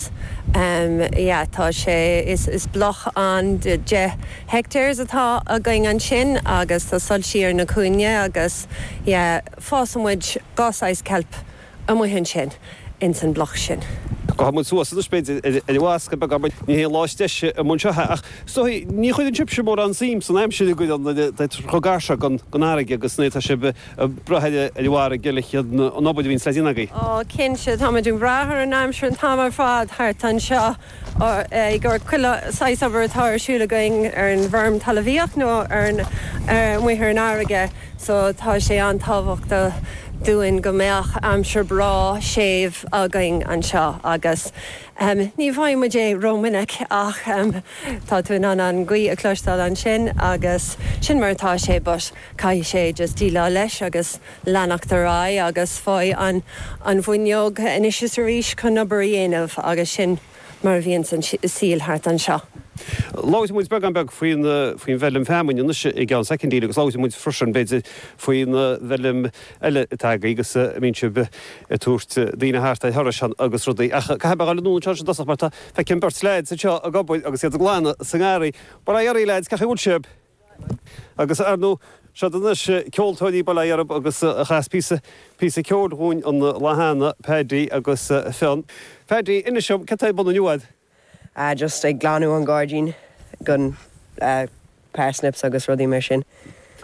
Acht. Yeah tá sé, is bloc de 10 hectares atá againn ansin agus tá soilsí ar na cúinne agus yeah fásann muid dhá saghas ceilp amuigh ansin ins an bloc sin. Gabhann muid suas anois b'fhéidir ar an bhfascadh beag ach ní hé an lá is deise i mbun seithe ach so ní chuireann sibse mórán suim san aimsir a gcuireann nuair atá sibh chomh gar seo gon fharraige agus nuair atá sibh ag brath air mar gheall ar an obair a bhíonns le déanamh agaí. Ó, cinnte, táimid ag brath ar an aimsir an t-am ar fad thart anseo ag chuile saghas obair atá ar siúl againn ar an bhfeirm talamhaíocht nó ar an amuigh ar an fharraige so tá sé an-tábhachtach dúinn go mbeadh aimsir breá séimh againn anseo agus ní bhfaighidh muid é ró-mhinic ach tá tú in ann an gaoth a chloisteáil ansin agus sin mar atá sé but Caithfidh sé just déileáil leis agus leanacht ar aghaidh agus faigh an an fhuinneog anois is arís chun obair a dhéanamh agus sin mar a bhíonns an saol thart anseo. Labhróidh muid beagán beag faoin faoin bhfeilm feamainn anois i gceann soicindí agus labhróidh muid freisin b'fhéidir faoin bhfeilm eile atá agaí agus a mbíonn sibh ag tabhairt daoine thart ar thurais agus rudaí ach caithfidh mé a dhul anall anseo anois i dtosach mar tá feicim beirt leaids anseo ag obair agus iad ag glanadh sa ngarraí. Bail ó Dhia oraibh leaids cén chaoi a bhfuil sibh. Agus, ar ndú, siad anois ceoltóirí Bhéal Deirg agus a chas píosa, píosa ceoil dhúinn an lá cheana, Paddy agus Fionn. Paddy, inis dom, cad tá ar bun inniu a'd? Ah, just ag glanadh an gairdín gon parsnips agus rudaí mar sin.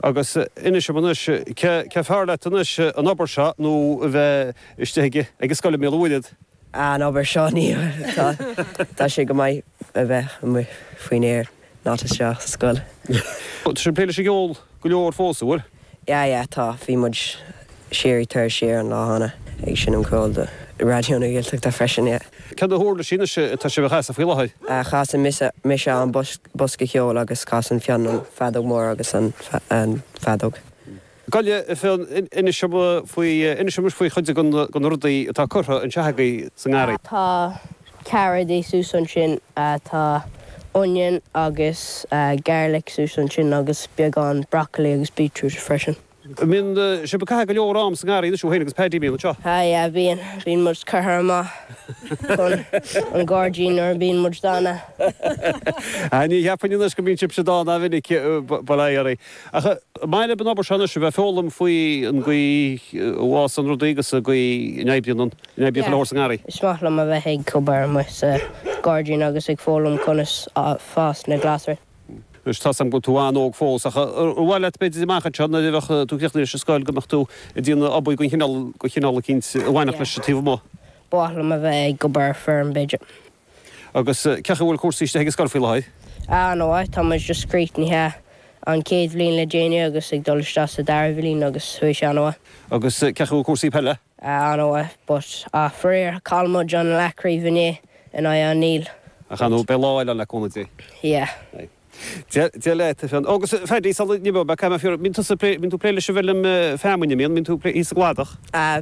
Agus inis dom anois, cé fearr leat anois, an obair seo nó a bheith istigh ag an scoil i mBéal an Mhuirthead? Ah, an obair seo, níl, tá sé go maith a bheith amuigh faoin aer. Not isteach sa scoil. Tá sibh ag plé leis an gceol go leor fós, a bhfuil? Yeah yeah tá, bhí muid thiar i dTuras Siar an lá cheana ag seinm ceoil do Raidió na Gaeltachta freisin yeah. Cé na huirlisí anois atá sibh a chasadh faoi láthair? Ah chasann mise an bosca ceoil agus casann Fionn an feadóg mór agus an fheadóg. Gabh i leith, Fionn. Inis dom anois faoi chuid de na rudaí atá curtha anseo agaibh sa ngarraí. Tá carrots suas ansin, tá onion agus garlic suas ansin agus beagán broccoli agus beetroot freisin. Bíonn sibh ag caitheamh go leor am sa ngarraí anois thú féin agus Paddy an mbíonn? Sea, yeah, bíonn. Bíonn muid curtha amach chun an gairdín nuair a bíonn muid dána. Ní cheapfainn anois go mbíonn sibhse dána ró-mhinic, but aye, arae. Ach maidir leis an obair seo anois, a bheith ag foghlaim faoi an gcaoi a bhfásann rudaí agus an gcaoi a n-oibríonn an, a n-oibríonn chuile shórt sa ngarraí. Is maith liom a bheith ag obair amuigh sa ghairdín agus ag foghlaim conas fás na glasraí. Anois tá 's agam go bhfuil tú an-óg fós, ach ar mhaith leat b'fhéidir amach anseo nuair a bheadh tú críochnaithe leis an scoil go mbeadh tú ag déanamh obair den chineál, den chineál eicínt a bhainfeadh leis an taobh amuigh? Ba mhaith liom a bheith ag obair ar feirm b'fhéidir. Agus cé chaoi a bhfuil cúrsaí istigh ag an scoil faoi láthair? Ar ndóigh, tá muid just críochnaithe an chéad bhliain le déanaí agus ag dul isteach sa dara bhliain agus bhí sé an-mhaith. Agus cé chaoi a bhfuil cúrsaí peile? Ar ndóigh, but, ach faraor, chaill muid an leathchraobh inné in aghaidh an Néill. Ach, ar ndóigh, beidh lá eile ann le cúnamh Dé. Yeah. Aye. Dia leat, a Fhionn. Ó, agus, Phaddy, sula n-imeoidh mé, caithfidh mé a phiocadh, bíonn tusa ag plé, bíonn tú ag plé leis an bhfeilm feamainne, an mbíonn, bíonn tú ag plé thíos sa gcladach? Ah.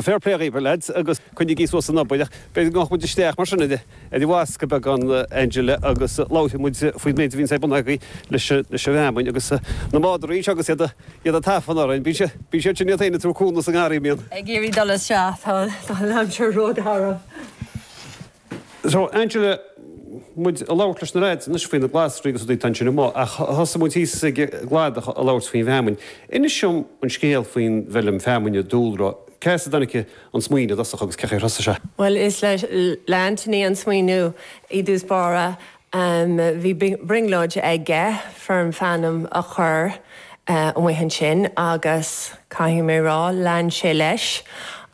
Fair play dhaoibh, lads, agus coinnigí suas an obair, ach b'fhéidir go ngabhadh muid isteach mar sin ar an bhfoscadh beagán Angela agus labharfaidh muid faoin méid a bhíonns ag bunadh agaibh leis an bhfeamainn agus na madraí anseo agus iad ag tafann orainn. Bíonn siad sin iad féin ag tabhairt cúnamh sa ngarraí, an mbíonn? Ag iarraidh dul isteach, tá an aimsir rógarbh. So, Angela, muid ag labhairt leis na leaids anois faoi na glasraí agus rudaí ansin amuigh, ach thosaigh muid thíos ag an gcladach ag labhairt faoin bhfeamainn. Inis dom an scéal faoin bhfeilm feamainne, dúlra, cé as a dtáinig an smaoineamh i dtosach agus cé chaoi ar thosaigh sé? Bhuel, is le Anthony an smaoineamh i dtús báire Bhí brionglóid aige feirm fheamainne a chur amuigh ansin agus, caithfidh mé rá, lean sé leis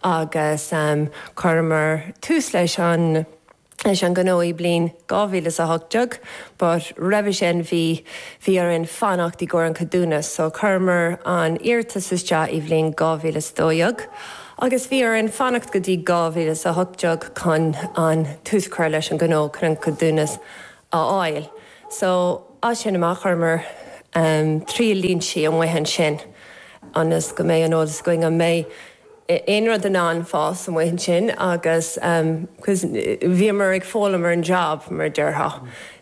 agus chuireamar tús leis an ngnó i bliain 2018 but roimhe sin bhí bhí orainn fanacht í gcomhair an ceadúnas so chuireamar an iarratas isteach i bliain 2012 agus bhí orainn fanacht go dtí 2018 chun an tús a chur leis an gnó chun ceadúnas a fháil. So, as sin amach chuireamar triail línsí amuigh ansin ionas go mbeidh an eolas againn an mbeidh aon rud in ann fás amuigh ansin agus cause bhíomar ag foghlaim ar an job mar a déarfá,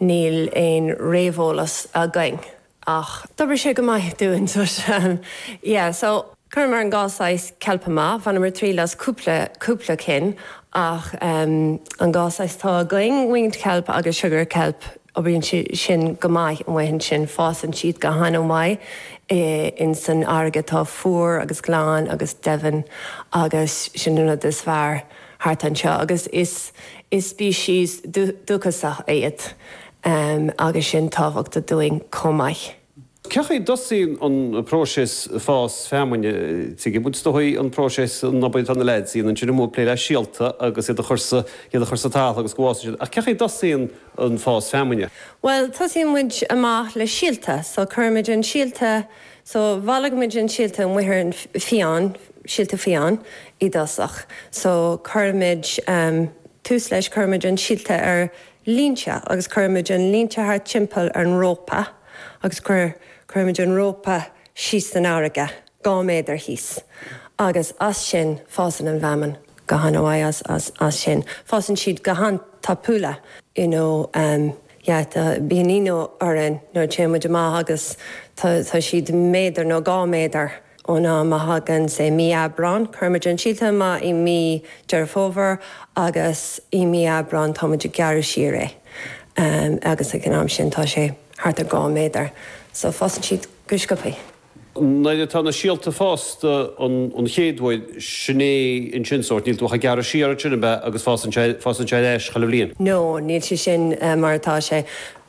ní raibh aon réamheolas againn. Ach d'oibrigh sé go maith dúinn so sin. Yeah so chuireamar an dhá saghas ceilp amach, bhaineamar triail as cúpla, cúpla cinn ach ehm an dhá saghas atá againn, winged kelp agus sugar kelp, oibríonn siad sin go maith amuigh ansin, fásann siad go han-mhaith i, in san fharraige atá fuar agus glan agus domhain agus sin an rud is fearr thart anseo agus is, is species dúchasach iad. Am agus sin tábhachta dúinn chomh maith. Cén chaoi a dtosaíonn an próiseas fás feamainne a Thaidhg? Bhuel, is dóigh an próiseas an obair atá na lads ag déanamh ansin amuigh ag plé le síolta agus iad a chur sa iad a chur sa talamh agus go bhfásann siad. Ach cén chaoi a dtosaíonn an fás feamainne? Bhuel, tosaíonn muid amach le síolta. So, cuirimid an síolta so, bailímid an síolta amuigh ar an fiáin, síolta fiáin i dtosach. So, cuirimid ehm tús leis cuirimid an síolta ar línte agus cuirimid an línte thart timpeall ar an rópa agus cuirimid an rópa síos san fharraige, dhá méadar thíos agus as sin fásann an bhfeamainn go han mhaith as sin. Fásann siad go han tapaidh you know yeah bíonn ionadh orainn nuair a téimid amach agus tá siad méadar nó dhá méadar Ón am a thagann sa Mí Aibreán cuirimid an síolta amach i Mí Deireadh Fómhair agus i Mí Aibreán táimid ag gearradh siar é agus ag an am sin tá sé thart ar dhá méadar so fásann siad go sciobtha. Nuair atá na síolta fásta an chéad uair sin é an sin sórt níl tú ach ag gearradh siar ansin ab ea agus fásann sé fásann sé arís chuile bhliain? No níl sé sin mar atá sé.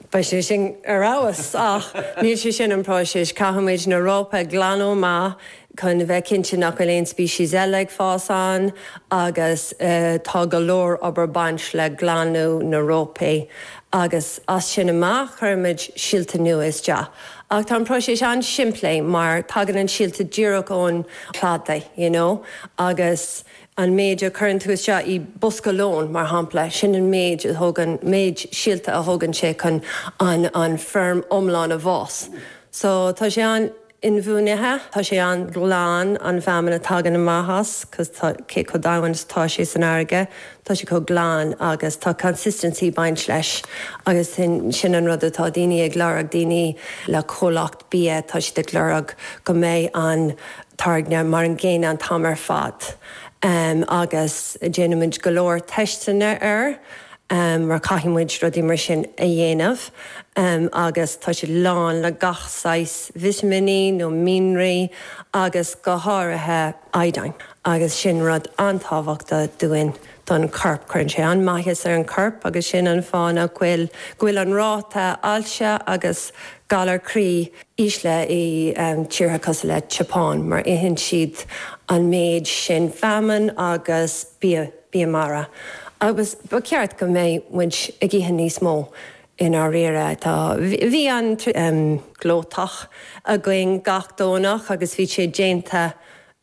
Bheadh sé sin ar fheabhas. Ach níl sé sin an próiseas. Caithfimid na rópa a ghlanadh amach chun a bheith cinnte nach bhfuil aon species eile ag fás ann agus tá go leor obair ag baint le glanadh na rópaí agus as sin amach cuirimid síolta nua isteach. Ach tá an próiseas an-simplí mar tagann an síolta díreach ón chladaigh you know agus An méid a chuireann tú isteach i bosca lóin, mar shampla, sin an méid a thógann, méid síolta a thógann sé chun an feirm iomlán a bhfás. So, tá sé an-inbhuanaithe, tá sé an-ghlan, an feamainn a thagann amach as, cos tá cé chomh domhain is atá sé san fharraige, tá sé chomh glan agus tá consistency ag baint leis agus sin an rud atá daoine ag lorg, daoine le comhlacht. bia, tá siad ag lorg go mbeidh an táirge mar an gcéanna an t-am ar fad agus déanaimid go leor teisteanna air mar caithfidh muid rudaí mar sin a dhéanamh agus tá siad lán le gach saghas vitiminí nó mianraí agus go háirithe iodine agus sin rud an-tábhachtach dúinn. don chorp. Cuireann sé an-maitheas ar an chorp agus sin an fáth nach bhfuil, go bhfuil an ráta ailse agus galar croí, ísle i dtíortha cosúil le tSeapáin mar itheann siad an méid sin feamainn agus bia mara agus ba cheart go mbeidh muid ag ithe níos mó i ndáiríre. Tá, bhí an, glóthach againn gach Domhnach agus bhí sé déanta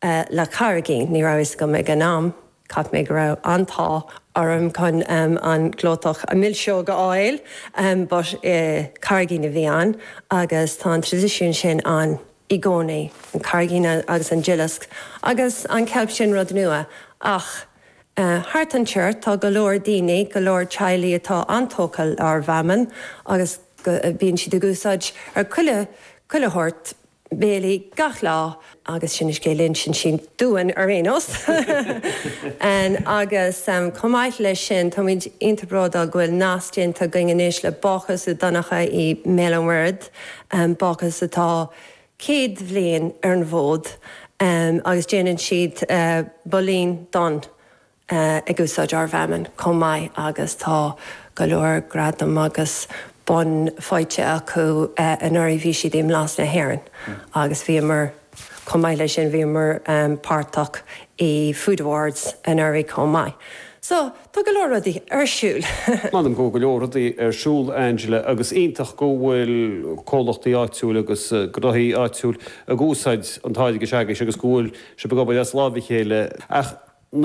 le carraigín, ní raibh a fhios agam ag an am. Cheap mé go raibh an-t-ádh orm chun an glóthach mar mhilseog a fháil but carraigín a bhí ann agus tá an tradisiún sin ann i gcónaí, an carraigín agus an duileasc agus an ceilp sin rud nua ach thart anseo tá go leor daoine, go leor teaghlaigh atá an-tógtha lenár bhfeamainn agus bíonn siad ag úsáid i chuile shórt. béilí gach lá agus sin an scéal a insíonn siad dúinn ar aon nós. Agus chomh maith leis sin táimíd iontach bródúil go bhfuil nasc déanta againn anois le Bácús Uí Dhonnchadha i mBéal an Mhuirthead, bácús atá céad bhliain ar an bhfód agus déanann siad builín donn ag úsáid ár bhfeamainn chomh maith agus tá go leor gradam agus bonn faighte acu. Anuraidh bhí siad i mBlas na hÉireann agus bhíomar, chomh maith leis sin bhíomar páirteach i Food Awards anuraidh chomh maith. So tá go leor rudaí ar siúl. M'anam go bhfuil go leor rudaí ar siúl, Angela, agus iontach go bhfuil comhlachtaí áitiúil agus gnóthaí áitiúil ag úsáid an táirge s'agaibhse agus go bhfuil sibh ag obair as lámha a chéile. Ach